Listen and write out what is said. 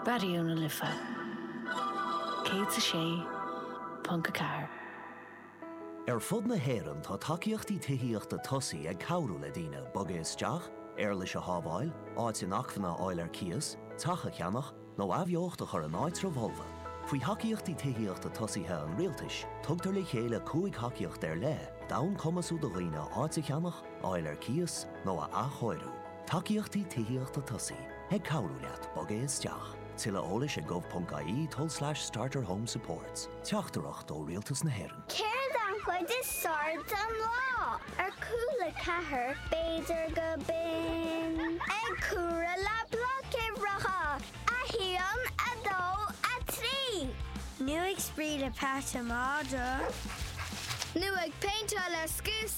Raidió na Life 106.4. Ar fud na hÉireann tá tacaíochtaí tithíochta tosaí ag cabhrú le daoine bogadh isteach, éarlais a shábháil, áit inacmhainne a fháil ar cíos, teach a cheannach, nó athbheocht a chur in áitreabh folmha. Faoi Thacaíochtaí Tithíochta Tosaithe an Rialtais, tugtar le chéile cúig thacaíocht ar leith d'fhonn cumasú do dhaoine áit a cheannach, a fháil ar cíos, nó a athchóiriú. Tacaíochtaí Tithíochta Tosaí ag cabhrú leat bogadh isteach. Tuilleadh eolais ag gov.ie tulslais starterhomesupports Teachtaireacht ó Rialtas na hÉireann. Céard an chuid is fearr den lá? Ar Cúla4, b'fhéidir gurb in. Ag comhaireamh le bloic uimhreacha, a haon, a dó, a trí. Nó ag spraoi le Peadar Mór. Nó ag péinteáil le scuab.